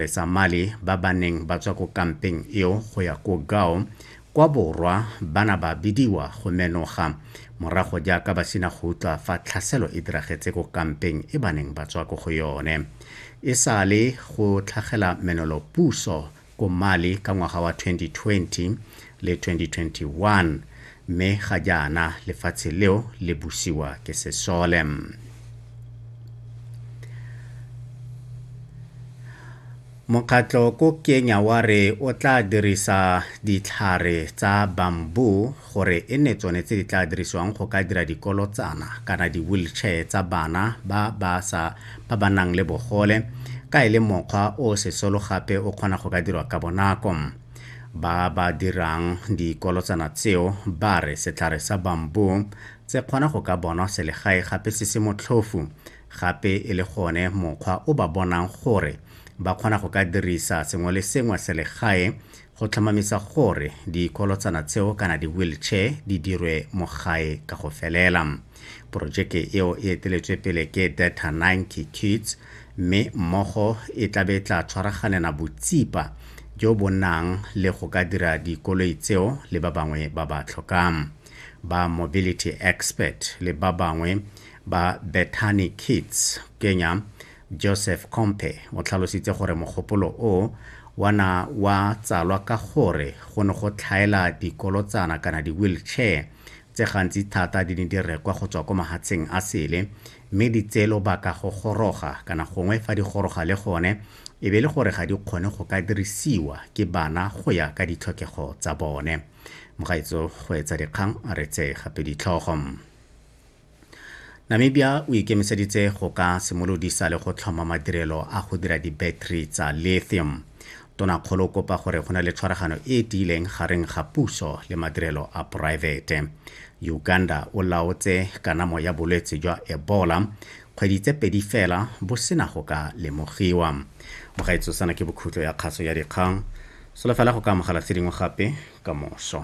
Besa Mali ba ba neng ba tswa ko kampeng eo go ya ko Gao kwa borwa ba na ba bidiwa go menoga morago jaaka ba sina go utlwa fa tlhaselo e diragetse ko kampeng e ba neng ba tswa ko go yone. E sa le go tlhagela menolo puso ko Mali ka ngwaga wa 2020, le 2021 mme ga jaana lefatshe leo le busiwa ke sesole mokgatlho ko kenya wa re o tla dirisa ditlhare tsa bambu gore e nne tsone tse di tla dirisiwang go ka dira dikolotsana kana di-wheelchair tsa bana ba ba sa ba ba nang le bogole ka e le mokgwa o sesolo gape o kgona go ka dirwa ka bonako Ba ba dirang dikolotsana tseo ba re setlhare sa bamboo tse kgona go ka bonwa selegae gape se se motlhofu gape e le gone mokgwa o ba bonang gore ba kgona go ka dirisa sengwe le sengwe selegae go tlhomamisa gore dikolotsana tseo kana di-wheelchair di dirwe mo gae ka go felela. Porojeke eo e eteletswe pele ke Data 90 Kids mme mmogo e tlabe e tla tshwaraganela botsipa jo bo nang le go ka dira dikoloi tseo le ba bangwe ba ba tlhokang. Ba Mobility Expert le ba bangwe ba Bethany Kids Kenya Joseph Kompe o tlhalositse gore mogopolo o wa na wa tsalwa ka gore go ne go tlhaela dikolotsana kana di-wheelchair tse gantsi thata di ne di rekwa go tswa ko mahatsheng a sele mme di tseye lobaka go goroga kana gongwe fa di goroga le gone e be le gore ga di kgone go ka dirisiwa ke bana go ya ka ditlhokego tsa bone. Mogaetso go etsa dikgang re tse gape ditlhogo. Namibia o ikemiseditse go ka simolodisa le go tlhoma madirelo a go dira di-battery tsa lithium. Tonakgolo o kopa gore go na le tshwaragano e e tiileng gareng ga puso le madirelo a poraefete. Uganda o laotse kanamo ya bolwetse jwa Ebola kgwedi tse pedi fela bo sena go ka lemogiwa. Mogaetso sana ke bokhutlo ya kgaso ya dikgang. Solofela go ka amogela tse dingwe gape ka moso.